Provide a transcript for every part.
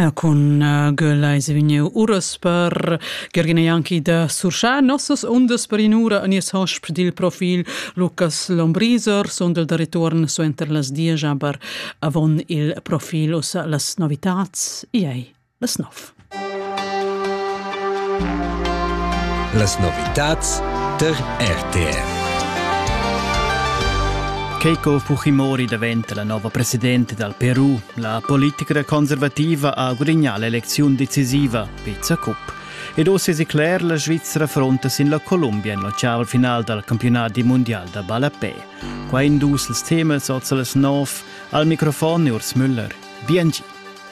Ja, con uh, Gölleise vegniu uras per Gergina Janki da Surschà nossas undas per inura a nies hosp dil profil Lucas Lombriser, sondel da return suenter las dies aber avon il profil ussa las novitats. Iei. las nov. Las novitads ter RTR. Keiko Fujimori diventa la nuova presidente dal Perù. La politica conservativa ha gudignà l'elezione decisiva, Pizza Cup. Ed oss es cler, la Svizzera fronta sin la Colombia in l'occiaval final dal campionat mondial da ballapè. Qua in dus els temas oz las nov, al microfon Urs Müller. Biangi.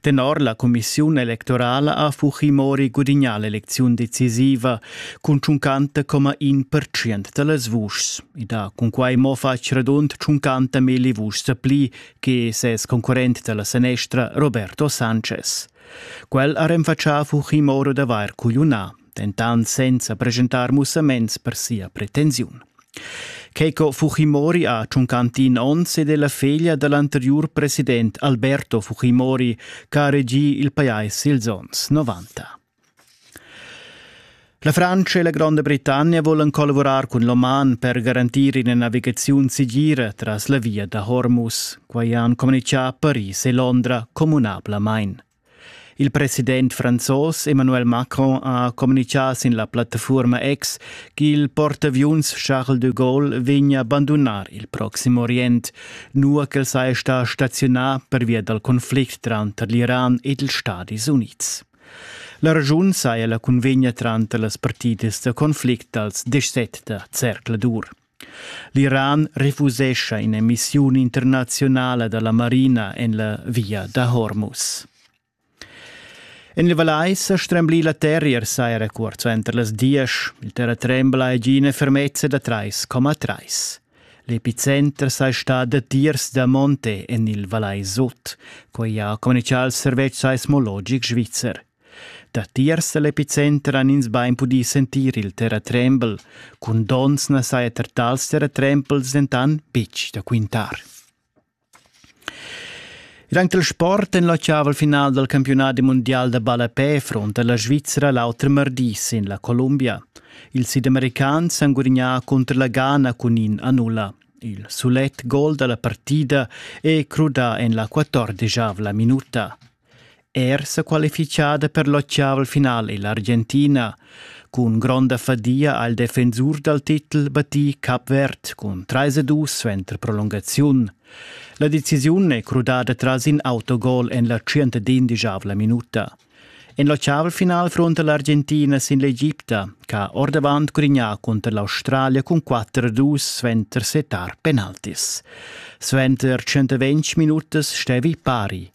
Tenor la cumissiun electorala ha Fujimori gudignà l'elecziun decisiva cun 50,1 percent da las vuschs. Ed ha cunquai mo fatg radund 50 milli vuschs pli che ses concurrent da la sanestra Roberto Sanchez. Quel ha renfatschà Fujimori d'avair cugliunà dentant senza presentar mussaments per sia pretensiun. Keiko Fujimori ha tschuncantin onns ed è la feglia da l'anteriur president Alberto Fujimori ch'ha regì il pajais ils onns 90. La Francia e la Gronda Britannia volan collavurar cun l'Oman per garantir ina navigaziun segira tras la via da Hormuz. Quai han communitgà Paris e Londra communablamain. Il president franzos Emmanuel Macron ha communitgà sin la plattafuorma X ch'il portaviuns Charles de Gaulle vegna abandonar il Proxim Orient, nua ch'el saja stà staziunà pervia dal conflict tranter l'Iran ed ils Stadis Unids. La ragiun saja la cunvegna tranter las partidas da conflict dals 17 da Zercladur. L'Iran refusescha in'emissiun internaziunala da la marina en la via da Hormuz. En il Valais ha stremblì la terrier saira cuort suenter las diesch. Il terratrembla è gia ina fermezza da 3,3. L'epicenter sei sta datiers da Monte en il Valais Sud, quai ha communichà il servetsch seismologic svizzer. Datiers dall'epicenter han ins bein pudì sentir il terratrembel. Cun donns na saja er tals terratrembels dentan betg da quintar. Anc il sport en l'ottaval final dal campiunat mundial da ballapè fronta la Svizzera l'auter mardi sin la Columbia. Ils sidamericans han gudignà cunter la Ghana cun in a nulla. Il sulet gol da la partida è crudà en la quattordesavla minuta. Er sequalifichada per l'ottavel final è l'Argentina. Cun gronda fadia ha il defensur dal titel battì Cap Verd cun 3-2 suenter prolungaziun. La decisiun è crudada tras in autogol en la 111 minuta. En l'ottavel final fronta l'Argentina sin l'Egipta, ch'ha ordavant grignà cunter l'Australia cun 4-2 suenter setar penaltis. Suenter 120 minutas stevi pari.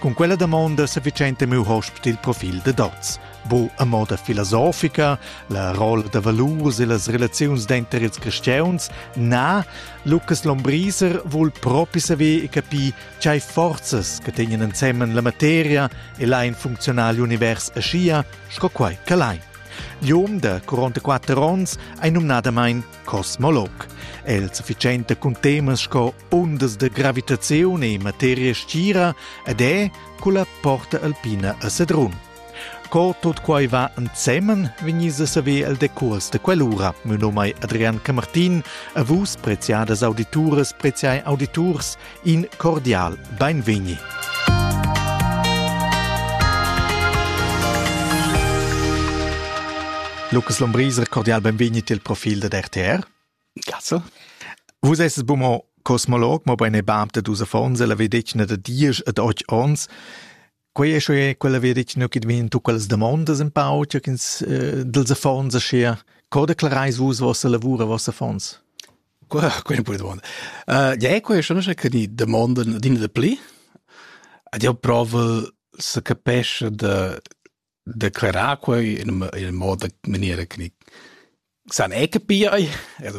Cun quella damonda sa vicenta miu hosp dil profil de dots. Bu a moda filosofica, la rolla da valurs e las relaziuns denter ils cristiauns, na, Lucas Lombriser vul propi saver e capir tgei forzas che tegnen ensemen la materia e lain funzionar l'univers aschia sco quai che lain. L'um da 44 onns ei numnadamein cosmolog. El sufficiente cun temas sco Ondas da gravitaziun e materia stgira ed è culla porta alpina a Sedrun. Co tot quai va ensemen, vegnis a saver el decurs de quell'ura. Mio nome è Adrian Camartin e vus, preziadas audituras, preziai auditurs, in cordial beinvegni. Lukas Lombriser, cordial benvegnit il profil de RTR. Cazzo. Vus esses bu mo cosmolog, mobein e bab da dus affons e la vedetgna da diesch ed otg onns. Quei è sche quella vedetgna che vegn tu quellas damondas un pau, tg'ins ins eh, dels affons aschia. Co declareis vus vossa lavur e vossa affons? Quella è una domanda. Uh, ja, quella è una che die domanden dienen de pli. Ed io provo se capesce de declarar quei in in moda maniera che san è capir ei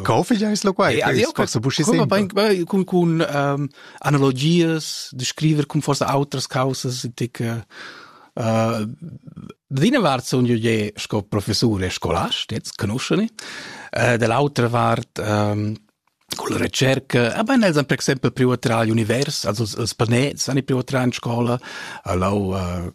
Kaufen ja ist lo quai. Forse buschi sempre. Con con ehm analogias de scriver con forse outras causas tic eh Dina vart son io je sco professor e scolast, jetzt conosceni. Eh dell'altra vart ehm con la ricerca, aber nel per esempio privatral univers, also els panets ani privatral in scola, allo eh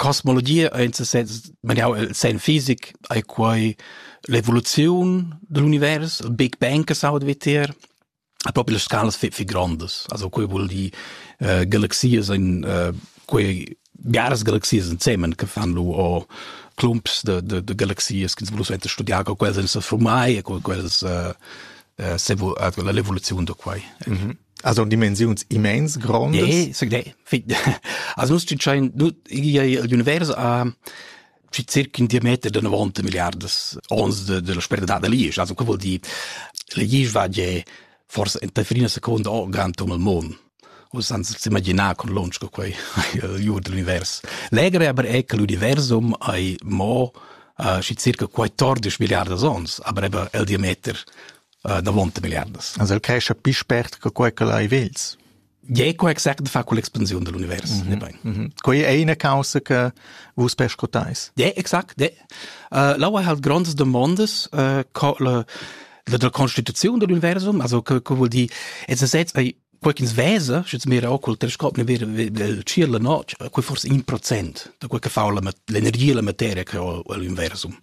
Cosmologia ei en ses senn maniau el senn fisic, ei quei l'evoluziun digl univers, il Big Bang che s'auda vitier, e propi las scalas fi fi grondas. Also quei vul dir eh, galaxias ein eh, quei biaras galaxias ensemen che fan lu o clumps de, de, de galaxias che ins vul suenter studiar co quels ein se formai e co quels eh, eh, s'evo- eh, l'evoluziun da quei. Mm -hmm. Also dimensiuns immens grondas. Ge, seg de. Also du schein du l'univers a ci circa un diameter de 90 miliardes ons de, de la sperda de lies. Also, che vuol dire? Le lies va je forse in fine secondo o grand um il mondo. O senza immaginare con lunch che quei iur dell'univers. Legere aber è che l'universum ai mo uh, ci circa 14 miliardes ons, aber eben il diameter uh, davonta milliardas. Also che chapi spert che quei che lai vels. Je co exact fa con l'expansione dell'universo. Mm -hmm. mm -hmm. Quei è una causa che vus pescotais. De, exact, de. Uh, L'aua ha grandes demandas uh, co la, la, la constituzione dell'universum, also che, che vuol dire, es a sets, quei ch'ins vesa, sche ins mira col telescop, ne vira il ciel la notg, quei forse 1% da quel che fa l'energia la materia che ho all'inversum.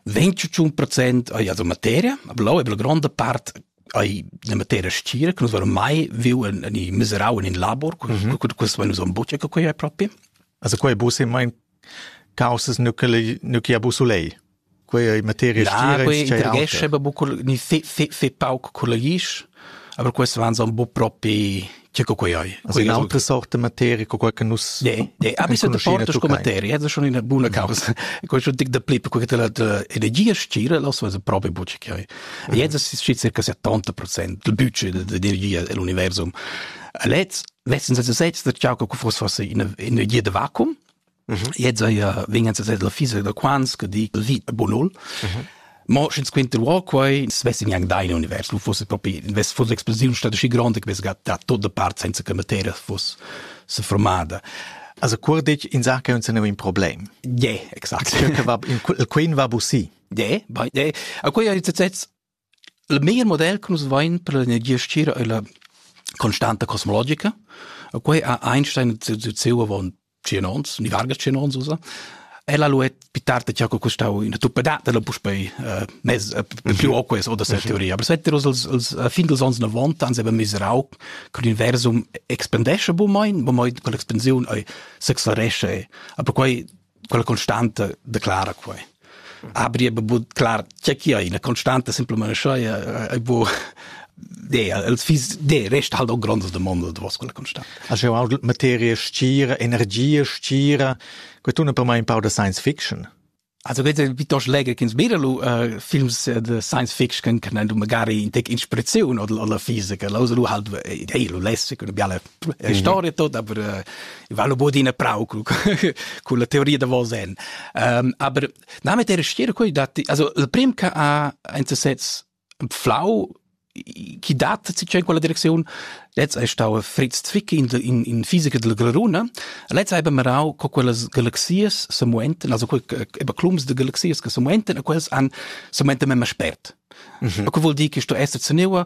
21% ai la materia, blau e la grande part ai la materia stira, che nus verom mai viu in, in miserau in in labor, questo mm -hmm. questo vai nus on bucce che quei è proprio. Also quei bu se mein caussas nu che nu chi ha busulei quei ei materia stira quei intrighescha aber bucco ni se se se pauc collegisch aber quest waren so bu propi che co quei ei also in altra sorte materia co qualche nus nee nee aber so portos co materia das schon in buona causa quei schon dic da plip co che la energia stira lo so proprio bucci che ei jetzt ist circa 70% del budget dell'energia dell'universum Letz wessen se se dat Jaco Kufus was in in je de Vakuum Jetzt ja wegen ze der fiese der Quans ke die lit bonol. Ma schins quint der war quai svess in yang dein univers lu fosse propi invest fosse explosiun statt schi grande ques gat da tot de part senza che materia fosse se formada. Also kur dich in Sache und sind in Problem. Ja, exakt. Il queen va bussi. Ja, bei ja. A quei hat jetzt Il meglier model che nus vain per l'energia stgira ei la constanta cosmologica. Quei ha Einstein ziu avon tschien ons, ni varga tschien ons usa. Ella lu è pitarta che ha costau ina tuppadata la puspei eh, mez eh, più o questo oder cette teoria. Aber seit als als fin dels ans 90 ans haben wir auch con universum expandesce bu mein, bu mein con l'expansiun ei s'acceleresce. Aber quei quella constanta declara quei abri e bu clar che chi ha ina constanta simplement schei e bu de els fis de rest halt auch grandes demandas de quella constanta a schau auch materie stira energie stira que tun per mai un pau de science fiction Also bitte piuttost legge che sbira lu uh, films uh, de science fiction che nan magari in tec inspirazione oder oder fisica lo lu halt ei lu lesse con biale E storia tot, aber äh, ich war bod in prau con la teoria da vosen. Ähm, aber na mit der stiere coi dat also el prim che ha ein sets flau chi dat si chen quella direction letz ei stau Fritz Zwick in in in fisica del Glruna letz ei bemerau co quellas galaxias se muenten also eba clums de galaxias che se muenten a quels an se muenten mem spert Mhm. Ko vuol dir che sto esser zenewa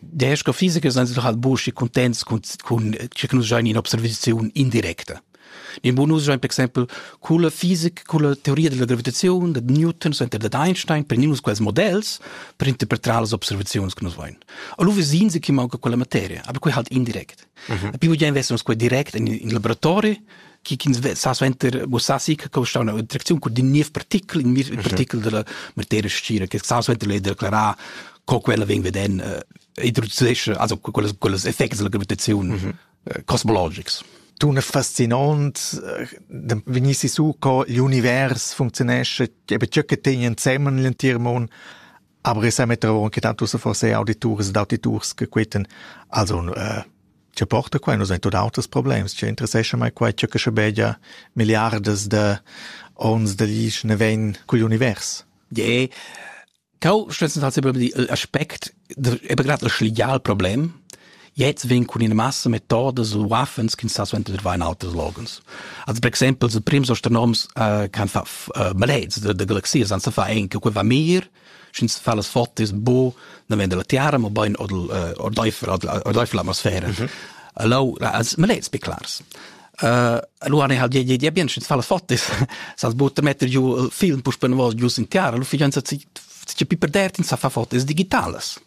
Der astrophisiker sind sie doch halt burschi contents cun cun che nus giain in observaziun indirecta. In bonus giain per exempel culla fisica, culla teoria della gravitazione, da Newton, center da Einstein, per nus quels modells per interpretar las observazions che nus voin. Allo vesin se chi manca quella materia, aber quei halt indirect. Mhm. Più già investons qua direct in in laboratori chi chi'ns sa suenter muossassi che costa una traziun cun din niev partikel, in mir partikel della materia scira che sa suenter lei declarar co quella vegn veden äh, introducesce also quellas quellas effects della gravitazione mhm. äh, cosmologics. Tu ne fascinant äh, vegnissi su co l'univers funzionesce, eben ciò che tegna insemmen l'entir mon Aber ich semetter avon che tanto se forse auditurs ed auditurs che queten also äh, che porta qua nos ein tot auters problems che interessescha mai qua che che begia milliardes de ons de lich ne ven cul univers je Cal stützen tatsächlich über die Aspekt eben gerade das Legalproblem Jetzt vegn cun ina massa metodas u waffens ch'ins sa suenter dvair in alters loghens. Also per exempel ils prims astronoms uh, kan fa uh, maleds de, de galaxias han sa fa en che quei va mir sch'ins fa las fotos bo dann wenn la terra mo bain oder ordeifer ordeifer l'atmosfera. Mhm. Allo als maleds be clars. Uh, allora ne halt je bien sch'ins fa las fotos sas butter metter giu film pus per vos giu sin terra lu fijanza ci ci piperdertin sa fa fotos digitales.